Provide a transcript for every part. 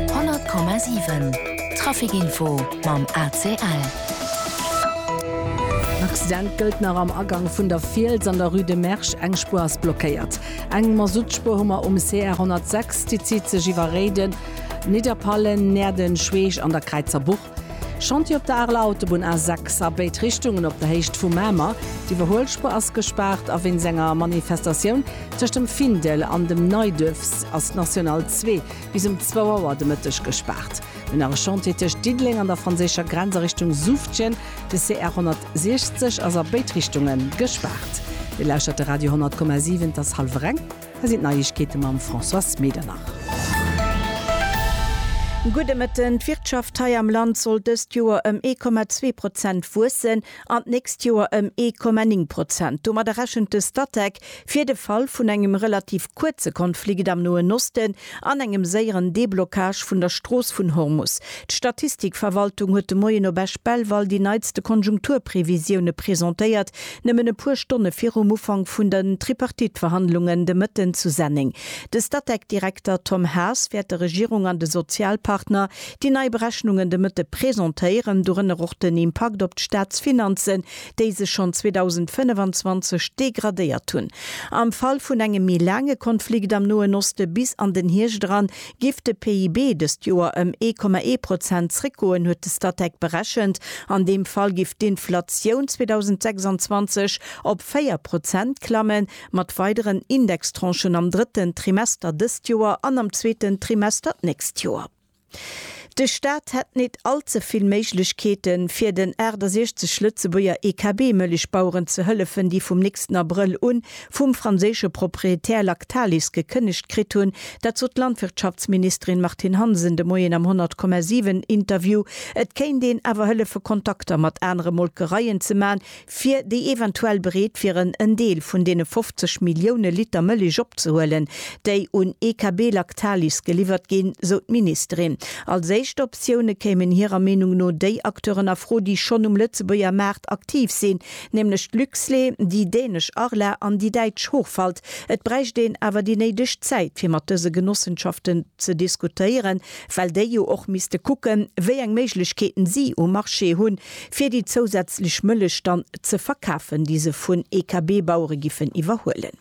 100,7 Trafic-Info mam ACL. En Accident gëllt nach am Agank vun der Fiels an der Rue de Mersch. Eng Spuer ass blockéiert. Eng Masuttspuer hu mer um CR 106. Déi zitt sech iwwer Réiden, Nidderpallen, Näerden, Schweech an der Kräizer Buch. Chantier op der Areler Autobunn A6 a béid Richtungen op der Héicht vu Mamer. D'Iwwerhuelspuer ass gespaart a wéinst enger Manifestatioun tëscht dem Findel an dem Neiduerf ass d'National 2 bis um zwou Auer de Mëtteg gespaart. Mee nach e Chantier tëscht Diddeleng an der franséischer Grenz a Richtung Suftgen. De CR 160 ass a béid Richtunge gespaart. Dir lauschtert de Radio 10,7, et ass hallwer eng. Hei sinn d'Neiegkeete mam Françoise Medernach. Gudde Mëtten, D'Wirtschaft hei am Land soll dëst Joer ëm ee Komma zwee Prozent wuessen an d'nächst Joer ëm ee Komma néng Prozent. Domadder rechent de Statec fir de Fall vun engem relativ kuerze Konflikt am Noen Osten, An engem séieren Déblockage vun der Strooss vun Hormus. D'Statistikverwaltung huet de Moien op Esch-Belval déi neitste Konjunkturprevisioune presentéiert, nëmmen e puer Stonne virum Ufank vun den Tripartite-Verhandlungen de Mëtten zu Senneng. De Statec-Direkter Tom Haas wäert der Regierung an de Sozialpartner déi nei Berechnungen de Mëtte presentéieren, dorënner och den Impakt op d'Staatsfinanzen, déi sech schonn 2025 degradéiert hunn. Am Fall vun engem méi laange Konflikt am Noen Oste bis an den Hierscht eran, giff de PIB dëst Joer ëm ee Komma ee Prozent zréckgoen, huet de Statec berechent. An deem Fall giff d'Inflatioun 2026 op véier Prozent klamme mat weideren Indextranchen am drëtten Trimester dëst Joer an am zweeten Trimester d'nächst Joer. De Staat hätt nit allze vill Méiglechkeeten, fir den 68 Lëtzebuerger EKB-Mëllechbaueren ze hëllefen, déi vum nächsten Abrëll un vum franséische Proprietär Lactalis gekënnegt kritt hunn. Dat sot d'Landwirtschaftsministerin Martine Hansen de Moien am 100,7 Interview. Et kéint een awer hëllefe Kontakter mat anere Molkereien ze man, fir déi eventuell bereet wieren en Deel vun deene 50 Millioune Liter Mëllech opzehuelen, déi un EKB Lactalis geliwwert ginn, sou d'Ministerin. Als éischt Optioune kéimen hirer Meenung no déi Acteuren a Fro, déi schonn um Lëtzebuerger Maart aktiv sinn, nämlech d'Luxlait, déi dänesch Arla an déi däitsch Hochwald. Et bräicht een awer déi néideg Zäit, fir mat dëse Genossenschaften ze diskutéieren, well déi jo och misste kucken, wéi eng Méiglechkeeten si um Marché hunn, fir déi zousätzlech Mëllech dann ze verkafen, déi se vun EKB-Bauere giffen iwwerhuelen.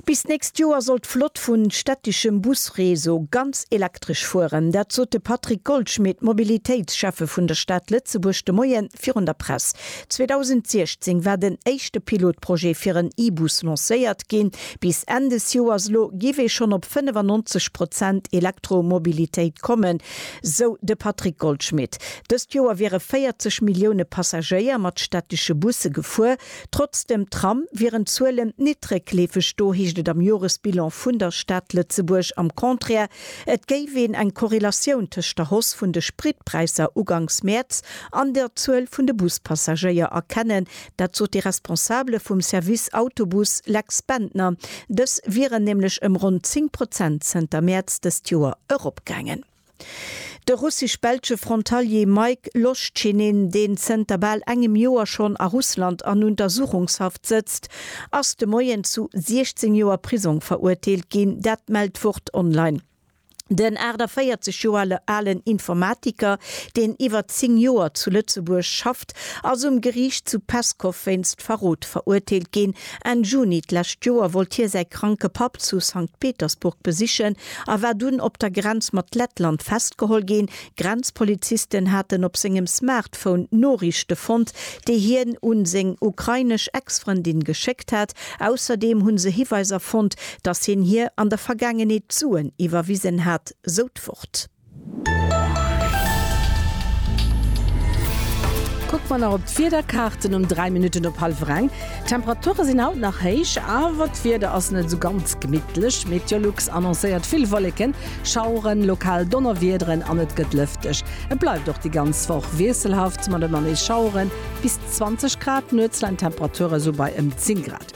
Bis d'nächst Joer soll d'Flott vu städteschem Busreseau ganz elektresch fueren. Dat sot de Patrick Goldschmit, Mobilitéitsschäffe vun der Stad Lëtzebuerg, de Moie virun der Press. 2016 war den éischte Pilotprojet fir en E-Bus lancéiert ginn. Bis Enn des Joers elo géif ee schonn op 95 Prozent Elektromobilitéit kommen, sou de Patrick Goldschmit. Dëst Joer wiere 40 Millioune Passagéier mat stättesche Busse gefuer. Trotz dem Tram wieren d'Zuelen nit réckleefeg. Do heescht et am Joresbilan vun der Stad Lëtzebuerg am Contraire, et géif een eng Korrelatioun tëscht der Hoss vun de Spritpräisser ugangs Mäerz an der Zuel vun de Buspassagéier erkennen. Dat sot de Responsabele vum Service Autobus Lex Bendtner. Dës wieren nämlech ëm ronn 10 Prozent zënter Mäerz dëst Joer eropgaangen. De russesch-belsche Frontalier Maik Loschinin, deen zënter bal engem Joer schonn a Russland an Untersuchungshaft sëtzt, ass de Moien zu 16 Joer Prisong verurteelt ginn. Dat mellt Wort Online. Den 48 Joer alen Informatiker, deen iwwer 10 Joer zu Lëtzebuerg schafft, ass um Geriicht zu Peskow wéinst Verrot verurteelt ginn. Enn Juni d'lescht Joer wollt hie säi kranke Papp zu Sankt Petersburg besichen a war dunn op der Grenz mat Lettland festgeholl ginn. Grenzpolizisten haten op sengem Smartphone Noriichte fonnt, déi hien un seng ukrainesch Ex-Frëndin geschéckt hat. Ausserdeem hu se Hiweiser fonnt, datt hien hir an der Vergaangenheet Suen iwwerwisen hat, sou d'Wort. Kucke mer nach op d'Wiederkaarten um 3 Minutten op hallwer eng. D'Temperature sinn haut nach héich, awer d'Wieder ass net esou ganz gemittlech. Meteolux annoncéiert vill Wolleken, Schaueren, lokal Donnerwiederen an et gëtt lëfteg. Et bleift och déi ganz Woch wiesselhaft mat ëmmer nees Schaueren. Bis 20 Grad, nuets leien d'Temperature sou bei ëm 10 Grad.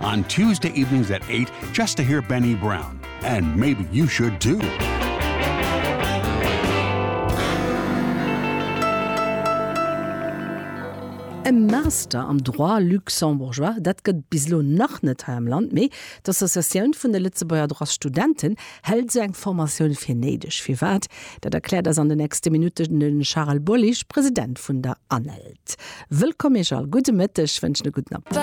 On Tuesday evenings at 8 just to hear Benny Brown and maybe you should too. E Master am Droit Luxembourgeois, dat gëtt bis elo nach net hei am Land, mee d'Associatioun vun de Lëtzebuerger Droitsstudenten hält esou eng Formatioun fir néideg. Firwat, dat erkläert eis an de nächste Minutten de Charel Bolich, President vun der ANELD. T, Wëllkomm iech all. Gudde Mëtteg, wënschen e gudden Appetit.